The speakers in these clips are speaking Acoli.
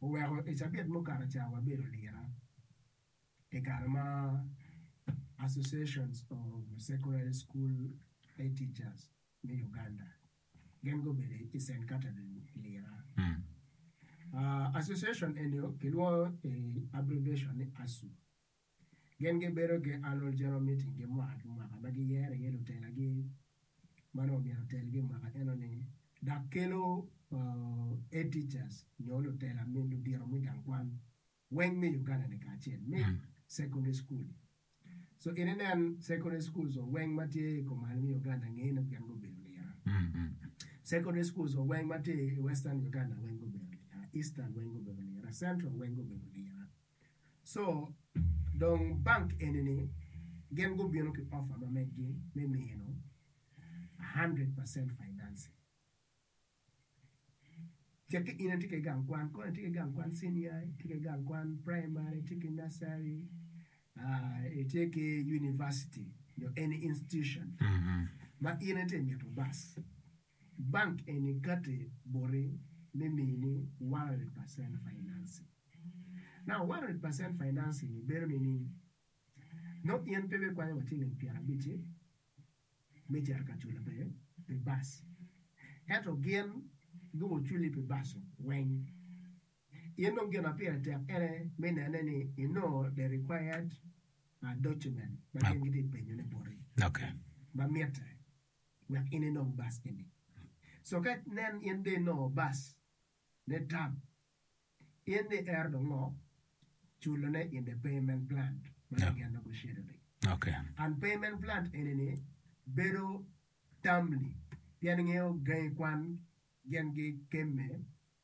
oweko i cabit mukato ca wabedo lira i kare ma Association of Secondary School Head Teachers me Uganda gin gubedo i Cent Catherine i lira. Association eni kilwongo i abbreviation ni ASU. Gin gibedo ki Annual General Meeting gi mwaka ki mwaka ma giyero iye lutelagi ma nongo myero otelgi i mwaka enoni dok kelo Head Teachers nyo lutela me ludito me gang kwan weng me Uganda-ni kacel me Secondary School. So in inen Secondary Schools weng ma tye i kom malo me Uganda ngeye ni gin gubedo lira. Secondary Schools weng ma tye i Western Uganda weng gubedo lira, Eastern weng gubedo lira, Central weng gubedo lira. co dong bank eni ni gin gubino ki offer ma megi me mino hundred percent financing ce ki in itye ki gang kwan kong itye ki gang kwan senior itye ki gang kwan primary itye ki nursery aah itye ki university nyo any institution ma in itye mito bac Bank eni kati boti me mini one hundred percent financing. Now one hundred percent financing ni bedo nini? Nongo in pe bikwanyo wa ciling pyer abic-ci me cito ka culo pi pi bac, ento gin gubio culi pi bac-cu weng. In dong gin ma pire tek ene me nene ni inongo the required document ma gin giti penyone boti ma mitte. wek in inong bac eni. Co ka nen in dong inongo bac me tam, in dong iero dong ngo? Culone in the payment plan ma kigin negotiated ni. And payment plan eni ni bedo timely pien ngeyo gangi kwan gin gi kemme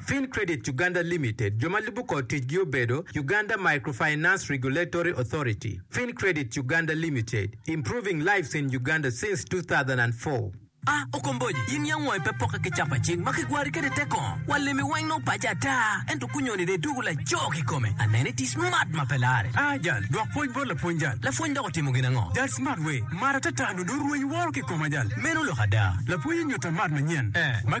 Fin Credit Uganda Limited, jo ma lubo kor ticgi obedo, Uganda Microfinance Regulatory Authority, Fin Credit Uganda Limited, improving lives in Uganda since 2004. A Okomboji, in yam wangi pe pokke ki capa cing ma kigwari kwede tek kong? Walemi weng nongo pace ata, ento kunyoni dong idwogo lajoo kikome. Aneno iti smart ma pe larre. A Jal, dwok pwoc bot lapwony jal. Lapwony dok otimo gin ango? Jal, Smart wee, mara ata ata nongo dong rweny woro kikoma jal. Meno lok ada. Lapwony onyutta mat manyen ma.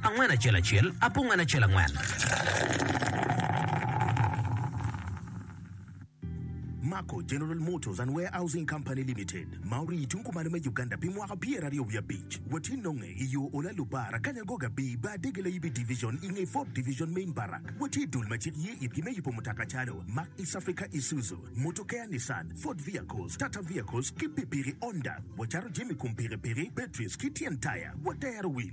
Angwen acel acel, apungane acel angwen. Mako General Motors and Warehousing Company Limited, ma orii i tung kumalo me Uganda pi mwaka pyeraryo wiye abic, watye nonge i yo Ola Lubar, Akanya Goga B, Bar Dege Layibi Division, i nge Ford Division Main Barrack. Watye i dul ma cik ye itgi me yubo mutoka calo, Mack East Africa Isuzu, Motor Care Nissan, Ford Vehicles, Tata Vehicles, ki pikipiki Honda. Wacato jami i kom pikipiki, batteries, ki tyen taya. Watero wil.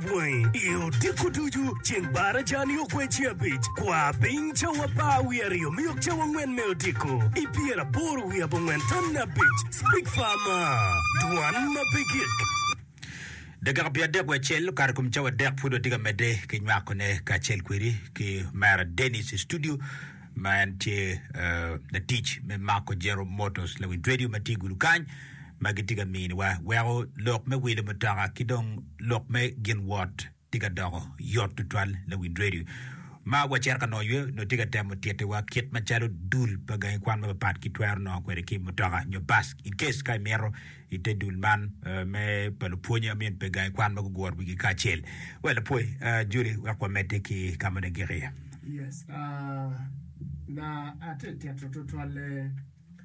Bwangi i odiko ducu ceng bar aja-ni okweco abic. Kwa piny cawa apar wiye aryo me yok cawa angwen me odiko i pyeraboro wiye abongwen tonni abic. Speak far maa. Dwan ma pe gik. Dakika pye adek wiye acel okato i kom cawa adek pud watye ka medde ki nywakone kacel kwedi ki Omera Denis i studio. ma en tye latic me Marco General Motors, lawic radio ma tye i gudo kany ma gitye ka miniwa weko lok me wilo mutoka ki dong lok me gin wot tye ka doko yot tutwal. Lawic radio ma wacito ka nongo ywe nongo tye ka temo tittiwa kit macalo dul pa gangi kwan mapapat ki twero nongo kwede ki mutoka nyo bus in case ka imito I te dul man me pa lupwonye amin pe gangi kwan ma guguro wigi kacel. Wel apwoyi uh, Julie wek wamedde ki ka moni gik iye. Yes, uh, na ate tito tutwalle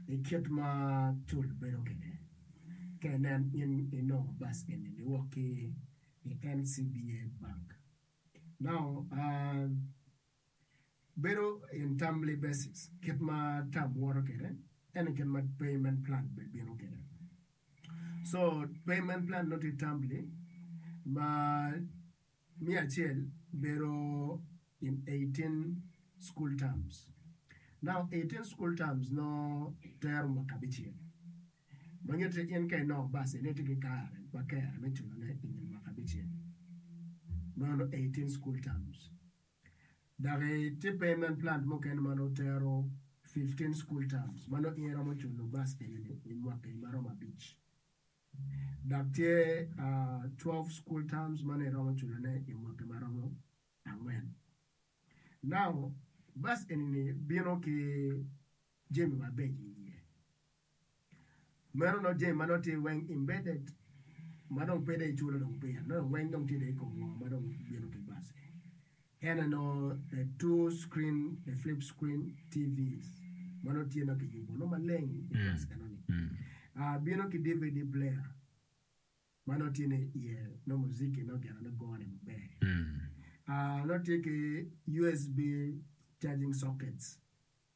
i kit ma cul bedo kede. Ka inen in inongo bus eni liwok ki i NCBA Bank. Now, uh, Bedo in timely basis kit ma tam woto kwede ene kit ma payment plan bene bino kwede so payment plan nongo tye timely ma me acel bedo in eighteen school terms now eighteen school terms nongo tero mwaka abicel ma nyuto ni in ka inongo basin ni itye ki kare ma kare me culo ne inge mwaka abicel meno eighteen school terms. Daki tye payment plan mukene ma nongo tero fifteen school terms ma nongo in iromo culo bus fee ni i mwaka eni ma romo abic. Dok tye twelve school terms ma nongo iromo culo ne i mwaka ma romo angwen. Now bus eni ni bino ki jami mabeco iye. Meno nongo jami ma nongo tye weng embedded ma dong pe dong iculo dong pire nongo weng dong tye dong ikom woko ma dong bino ki bus eni ene nongo the two screen the flip screen TVs ma nongo tye nongo kiyubo nongo maleng i bus enoni Ah, bino ki DVD player ma nongo tye ni iye nongo muziki nongo gin nongo gone maber Ah, nongo tye ki USB charging sockets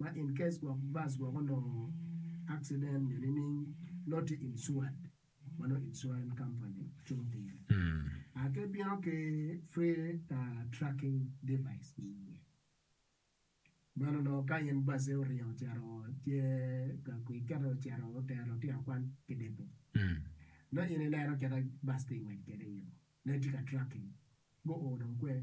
ma in case gwok bus gwok onongo accident nyo nining nongo tye insured ma nongo insurance company cung pire ah ki bino ki free tracking device i iye meno onongo ka in bus-si oringo ocito tye ka kwi kit ocito otero lutino kwan ki depo nongo in ineno kit ma bus-si tye ka ngwec kwede i yo nongo itye ka tracking guo dong kwer.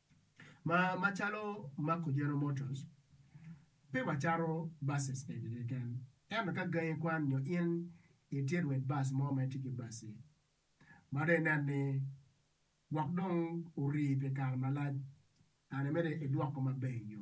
Ma macalo mako General Motors, pe wacato buses kwedgi keken. Ento ka gangi kwan nyo in itye rwed bus mo ma itye ki bus-ci, ma dong inen ni gwok dong orii pi kare malac, kara-ni miti idwoko maber i yo.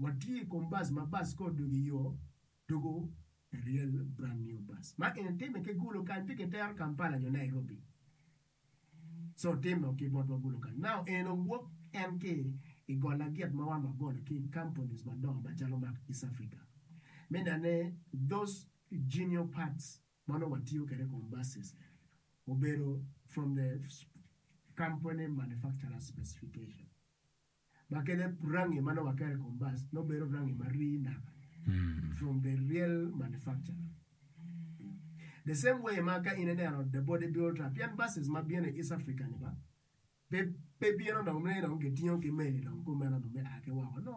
Watye i kom bus ma bus ka odwogo i yo dwogo a real brand new bus ma eni timme ki gulu kany pe kitero Kampala nyo Nairobi so timme o ki botwa gulu kany now en owok en ki i gol lagit ma wa ma golo ki companies madongo macalo ma East Africa me nene those genial parts ma nongo watiyo kwede i kom buses obedo from the company manufacturer specification. ma kene rangi ma nongo aketo i kom bas nongo bedo rangi ma rii naka from the real manufacturer the same way ma ka in ineno the body builder pien buses ma bino i East Africa ni ba pe bino dong ni dong kitingo ki meli dong kumeno dong bia ki woko no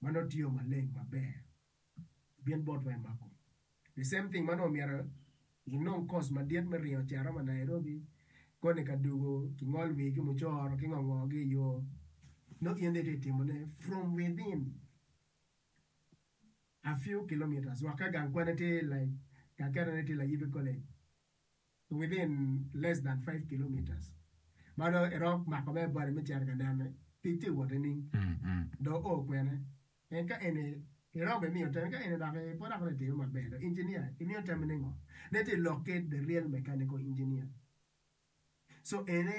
ma nongo tiyo maleng maber bit botwa i mako the same thing ma nongo myero inong course madit me ringo cito ma Nairobi koni ka dugo ki ngol wii ki mucoro ki ngo ngo gi i yoo nongo in dong itye ka timo ne from within a few kilometres wek ka gang kwane tye like kaketone tye layibe college. within less than five kilometres ma dong iromo mako mere body me cito ka nene tic tye wot nining dong o kwene en ka eni iromo i miyo tem ka eni dok i poto aye itime maber dong engineer i miyo tem ni ngo ne tye lok ki the real mechanical engineer so eni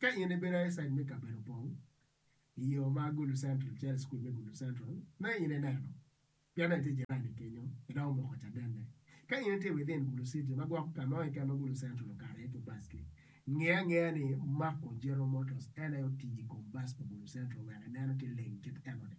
Ka in ibedo aecaid me kabedo pong i yo ma Gulu Central calo i cukul me Gulu Central ma in ineno pien en tye jirani kenyo en dok omoko cadenne. Ka in itye within Gulu City ma gwoko ka mo keken ma Gulu Central okato iye ki bac-ki, nge angeya ni Marco General Motors en aye otiyo i kom bac pa Gulu Central wek ineno tye leng kit enoni.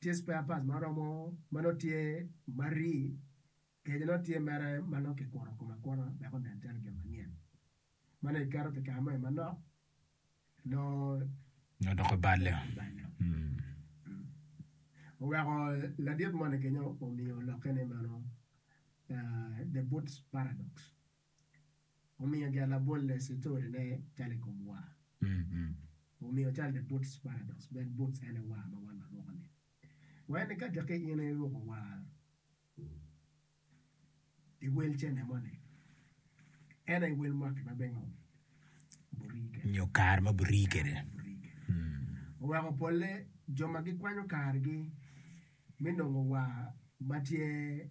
Tye spare parts ma oromo ma nongo tye ma ri, kenyo nongo tye mere ma nongo kikuro kome akura wek onen calo gin manyen. Ma nongo iketo pi kare moni manok nongo Odoko balo. Oweko ladit moni kenyo omiyo olokke ni meno the boots paradox. omiyo gia labolle citori ne calo i kom waa. Omiyo calo the boots paradox bed boots ene waa ma wan waruko ni. Wee ni ka teki in iruko waa i wel cene moni ene i wel mwaki ma bengo burii kede. Nyo kare ma burii kede. Oweko polle jo ma gikwanyo kargi mi nongo waa ma tye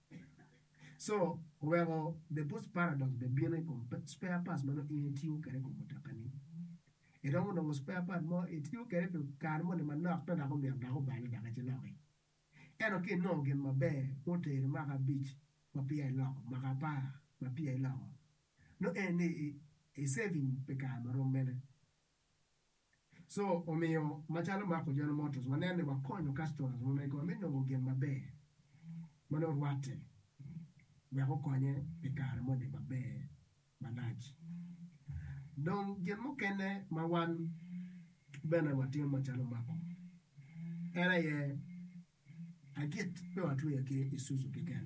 Co oweko the Boost Paradox bene bino i kom spare parts ma nongo in itiyo kwede i kom mutokani. Iromo nongo spare part mo itiyo kwede pi kare moni manok adada dok omyero dok obale dok ci loki. Ento ka inongo gin maber ma oteri mwaka abic ma peya iloko, mwaka apar ma peya iloko, nongo en ni i saving pi kare ma rom mene. So omiyo, macalo Marco General Motors, wanen ni wakonyo customers wa megowa me nongo gin maber ma nongo rwatte wek okonye pi kare moni maber malac. Dong gin mukene ma wan bene watimo macalo Marco en aye agit pe watweyo ki Isuzu keken,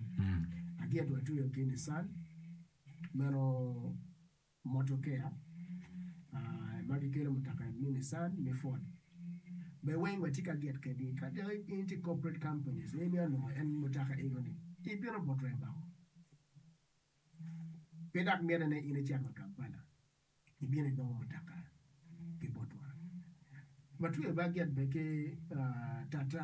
agit watweyo ki Nissan, meno Motokeya ma gikelo mutoka me Nissan me Ford be weng wa tye ka get kedi ka dok in tye corporate companies in onongo en mutoka ego ni ibino but remba oo pe dok myete ne in icito wa Kampala ibino igongo mutoka ki botwa. Watweyo baget be ki Tata.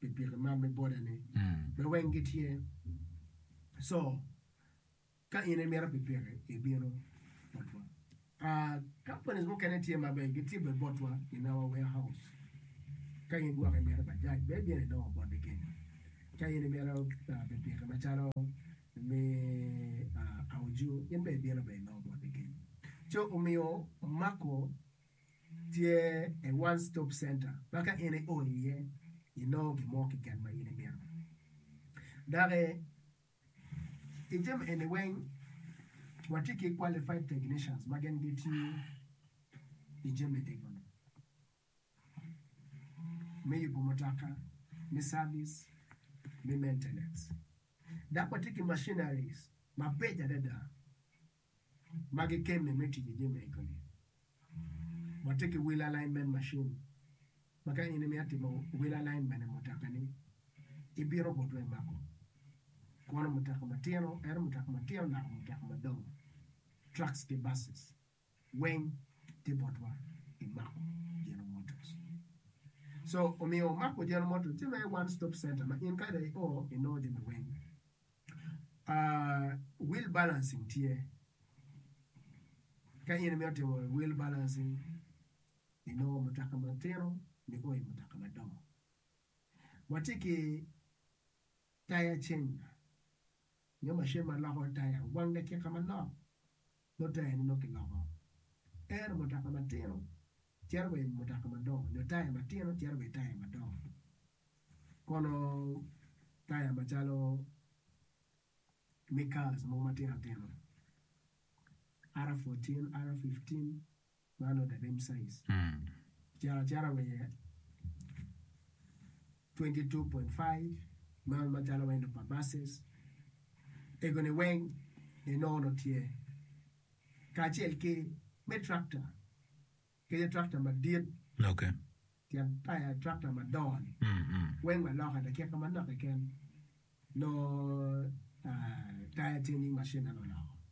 pi piki mar me bode ni me weng gi tye so ka in i mito pi piki i bino botwa aa companies mukene tye ma be gi tye be botwa in our ware house ka in gwok i mito bajaj be i bino i nongo bot i kenyo ka in i mito pi piki ma calo me aa auju in be i bino be i nongo bot i kenyo so omiyo omako tye a one stop center ma ka in io iye inongo gin mo keken ma in imito dok i jami eni weng watye ki qualified technicians ma gin gitiyo i jami eni me yubo mutoka me cabic me mentenance dok watye ki macinaric mabeco adada. ma gikelle me tic i jami me kome. Watye ki wheel alignment machine ma ka in imito atimo wheel alignment i mutoka-ni, ibino bot wa imako kono mutoka matino, ento mutoka matino naka mutoka madongo, trucks ki buses weng tye bot wa imako General Motors. So omiyo omako General Motors tye mere one stop center ma in ka dong i o inongo jami weng. Will balancing tye, ka in imito timo will balancing inongo mutoka matino nio i mutoka madongo. Watye ki tire changer nyo macin ma loko tire wang dakika manok. Mutaya ni nongo kiloko tere mutoka matino cito wa i mutoka madongo nyo taya matino cito wa i taya madongo kono taya macalo me cars mogo matino tino R fourteen, R fifteen Man ode me Msais. Cito acita wa iye twenty two point five man macalo wendo pa buses egoni weng inongo nongo tye kacel ki me tractor kadi tractor madit tyen tractor madongo ni weng wa loka dakika manok keken nongo taya changing machine meno oloko.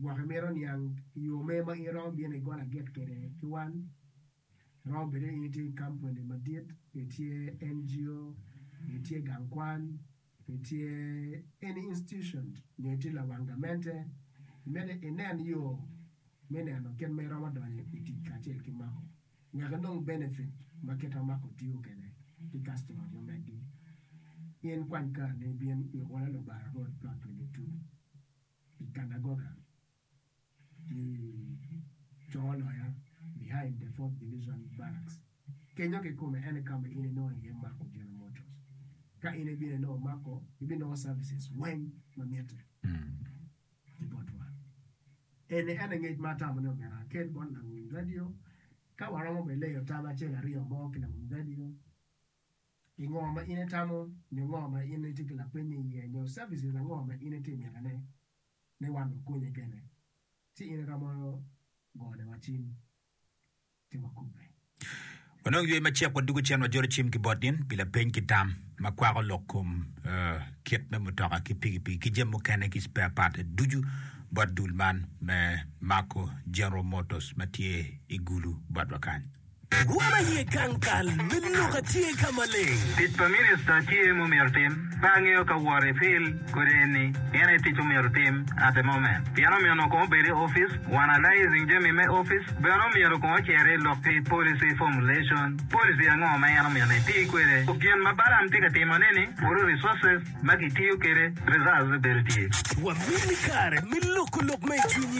Gwok imito niang i yo mer ma in iromo bino i got agik kwede ki wan. Romo bedo ni in itye ki kampuni madit, itye NGO, itye gang kwan, itye any institution nyo itye lawang gamente. Miti inen yo me neno kit ma iromo donyo i tic kacel ki mako. Nyaka inong benefit ma kit ma mako tiyo kwede ki kastoma mo megi. In kwany kareni ibin i Ola Lubanga Road, Plot 22, i Kanagoga, i Congo Loya, behind the Fourth Division Barracks. Kenyo kikome en aye ka ma in inongo iye mako General Motors. Ka in ibino inongo mako, ibinongo services weng ma mitte. ki botwa. Eni en aye ngec ma atamo ni omyero akel bot lawiny radio. Ka waromo bene leyo tam acel aryo mo ki lawiny radio pi ngo ma in itamo nyo ngo ma in itye ki lapeny iye nyo services ango ma in itye mitone ni wan wakonyi kene, ci in iromo goniwa cim. Onongo ywe macek wa dugo cen wa jolo cim ki bot in pi lapeny ki tam ma kwako lok kom kit me mutoka ki pikipiki ki jami mukene ki spare part ducu bot dul man me Marco General Motors ma tye i Gulu bot wa kany. Wun aye gang kal me lok atye ka maleng. Tic pa Minista tye mu myero tim. Pe angeyo ka wor i fil kodi eni pien aye tic omyero otim at the moment pien omiyo onongo kong obed i office one alysing jami me office bene omyero kong ocer i lok ki policy formulation policy ango ma en omyero ni eti kwede ku gin ma Balaam tye ka timo ni ni puro resources ma ki tiyo kede reserves bedo tye. Wamini kare me loko lok ma i cwinyi.